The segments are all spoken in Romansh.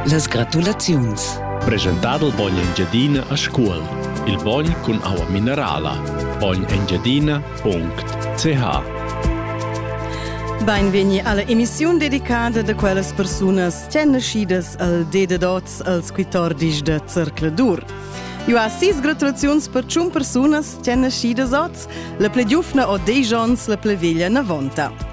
Las gratulaziuns. Presentà dal bogn Engiadina a Scuol. Il bogn cun aua minerala. bognengiadina.ch Beinvegni alla emissiun dedicada da quellas persunas ch'èn naschidas al D de Dots als 14 de Zercladur. Eu ha sis gratulaziuns per tschun persunas ch'èn naschidas oz, la ple giufna o deis ons, la ple veglia navonta.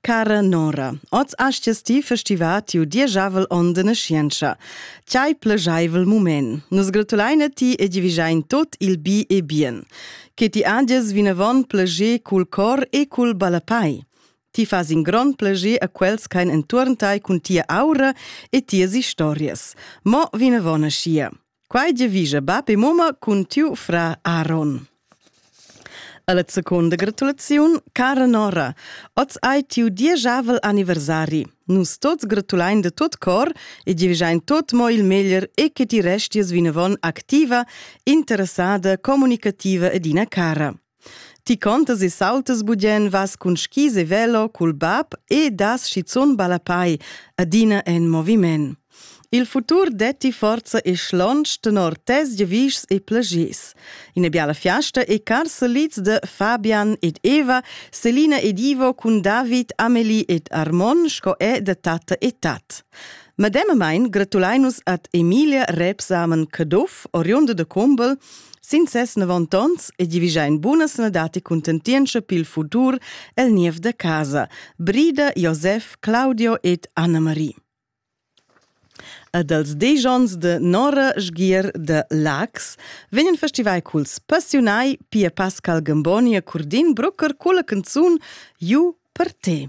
Cara Nora, oz astges ti festivar tiu dieschavel onn de naschientscha. Tgei plescheivel mument. Nus gratulein a ti e divigein tot il bi e bien. Che ti andies vinavon pleger cul cor e cul ballapai. Ti fas in grond pleger a quels ch'ein entuorn tai cun tia aura e tias historias. Mo vinavon aschia. Quai giavischa bap e mamma cun tiu fra Aaron. Alla seconda gratulaziun, cara Nora, oz hai tiu dieschavel anniversari. Nus tots gratulain de tot cor e giavischein tot mo il meglier e che ti resties vinavon activa, interessada, comunicativa ed ina cara. Ti contas e sautas bugen, vas cun skis e velo cul bab e das schizun ballapai, adina en moviment. Il futur detti forza e schlonsch tenor tes giavischs e plagiers. Ina biala fiasta e cars solids de Fabian ed Eva, Selina ed Ivo cun David, Amelie ed Armon sco è da tatta e tat. Medemamain gratulein nus ad Emilia Rebsamen Caduff, oriunda de Combel, sin ses 90 onns e divigein buna sanadati contentientscha pil futur el niev de casa, Brida, Josef, Claudio ed Anna-Marie. Ad als dies onns de Nora Sgier de Lax vegnan festivai culs passiunai Pia Pascal Gamboni e Curdin Brucker culla canzun Ju per te.